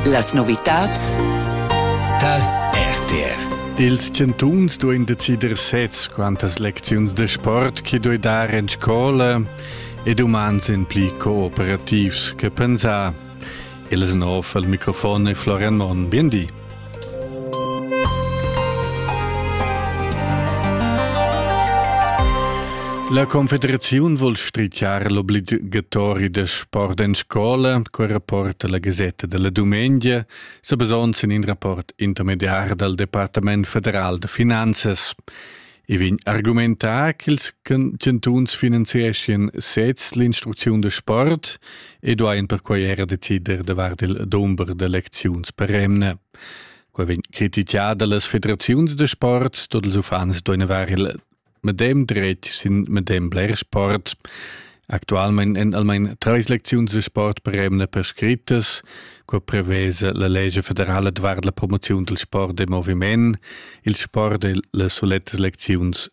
Las novitads dal RTR ils chantuns duein decider sez quantas lecziuns de sport che doi dar en scola ed umans en pli cooperativs che pensar. Il snov al microfon è Florian Monn. Bien di. La Confederaziun vul strichar l'obligatori da sport en scola, quel rapport la Gazetta della Dumengia, sa basond sin in rapport intermediar dal Departament federal da finanzas. I vegn argumentà ch'ils chantuns finanzieschien sez l'instrucziun da sport e duain perquai era decider davart il dumber d'elecziuns per emna. Quai vegn critichà da las federaziuns da sport, tot ils uffants duain avere il medem dretg sin medem bler sport. Actualmein èn almain treis lecziuns da sport per emna prescrittas, co prevesa la lescha federala davart la promoziun dal sport e moviment, il sport e las sulettas lecziuns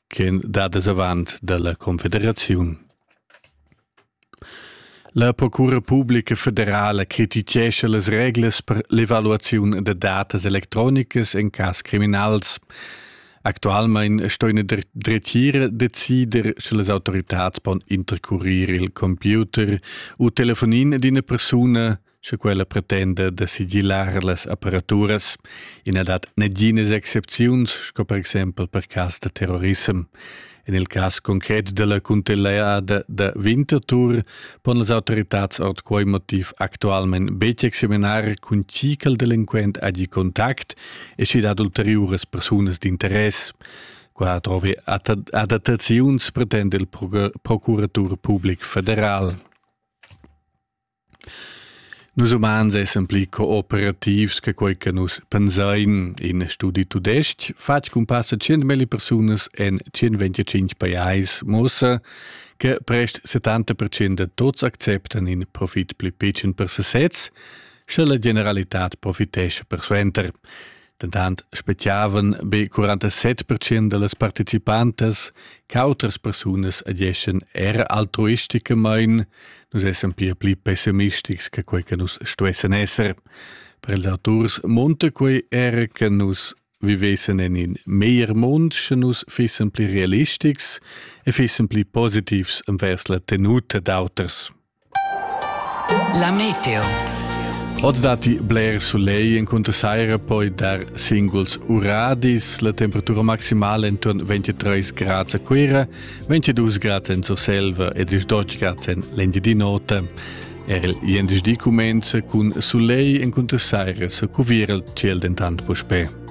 ch'èn dadas avant dalla Confederaziun. La Procura Publica Federala crititgescha las reglas per l'evaluaziun da datas electronicas en cas criminals. Actualmein sto ina dretgira decider sche las autoritads pon intercurir il computer u telefonin d'ina persuna sche quella pretenda da sigilar las apparaturas. Ina dat neginas excepziuns, sco per exempel per cas da terrorissem. En il cas concret della cuntinuada da Winterthur pon las autoritads ord quei motiv actualment betg examinar cun chi che il delinquent hagi contact e schi dat ulteriuras persunas d'interess. Qua trovi adattaziuns pretende il Procuratur Public Federal. Nus umans essan pli cooperativs che quei che nus pensein. In studi tudestg fatg cun passa tschient melli persunas en tschient-venticinc pajais muossa che prest settanta percent da tuts acceptan in profit pli pitschen per sesez, sche la generalitad profitescha persuenter. Dentant speziavan be 47 percent da las participantas ch'autras persunas ageschan er altruisticamain. Nus essan pia pli pessimistics che quai che nus stuessan esser. Per ils auturs munta quai er che nus vivessen en in meglier mund, sche nus fissen pli realistics e fissen pli positivs envers la tenuta d'auters. La meteo. Oz datti bler soleil encunter saira, poi dar singuls uradis. La temperatura maximala intorno 23 grad a Cuira, 22 grad en Surselva e 18 grad en l'Engiadina Nota. Er il jendeġdi cumenza cun soleil encunter saira, sa cuvira il ciel dentant puspè.